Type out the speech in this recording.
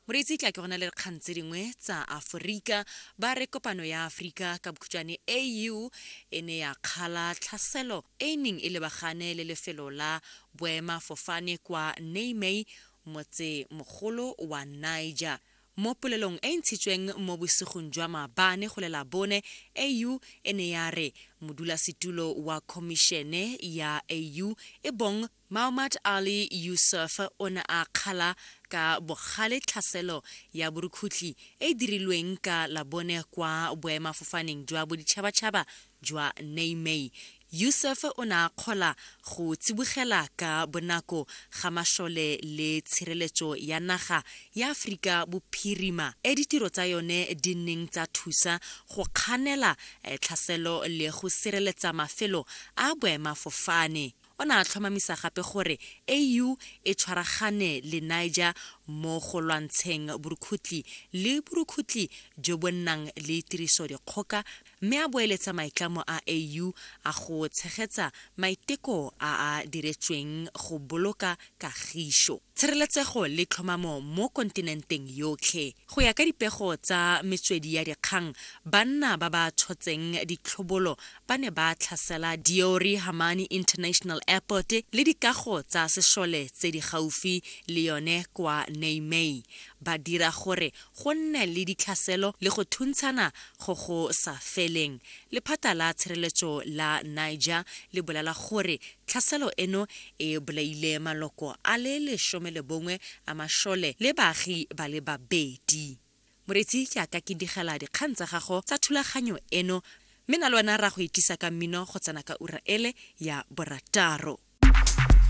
moreetsi tla ke go na le dikgang tse dingwe tsa aforika ba re kopano ya aforika ka bokhutšwane au e ne ya kgala tlhaselo e e neng e lebagane le lefelo la boemafofane kwa niamey motsemogolo wa niger Mo polelong e e ntshitsweng mo bosigong jwa maabane go la Labone, AU e ne ya re modulasetulo wa Khomišene ya AU e bong Mahamat Ali Yusuf o ne a kgala ka bogale tlhaselo ya borukhutlhi e e dirilweng ka Labone kwa boemafofaneng jwa boditšhabatšhaba jwa Niamey Yousef o ne a kgola go tsibogela ka bonako ga mašole le tshireletso ya naga ya Aforika Bophirima e ditiro tsa yone di neng tsa thusa go kganela tlhaselo le go sireletsa mafelo a boemafofane. O ne a tlhomamisa gape gore AU e tshwaragane le Niger mo go lwantsheng borukhutli le borukhutli jo bo nnang le tirisodikgoka mme a boeletsa maitlamo a AU a go tshegetsa maiteko a a diretsweng go boloka kagišo, tshireletsego le tlhomamo mo kontinenteng yotlhe. Go ya ka dipego tsa metswedi ya dikgang, banna ba ba tshotseng ditlhobolo ba ne ba tlhasela Diori Hamani International Airport le dikago tsa sešole tse di gaufi le yone kwa Niamey, ba dira gore go nne le ditlhaselo le go thuntshana go go sa feleng. Lephata la tshireletso la Niger le bolela gore tlhaselo eno e bolaile maloko a le lesome le bongwe a mashole le baagi ba le babedi. Moretsi ke a ka ke digela dikgang tsa gago tsa thulaganyo eno mme na le wena ra go itisa ka mmino go tsena ka ura ele ya borataro.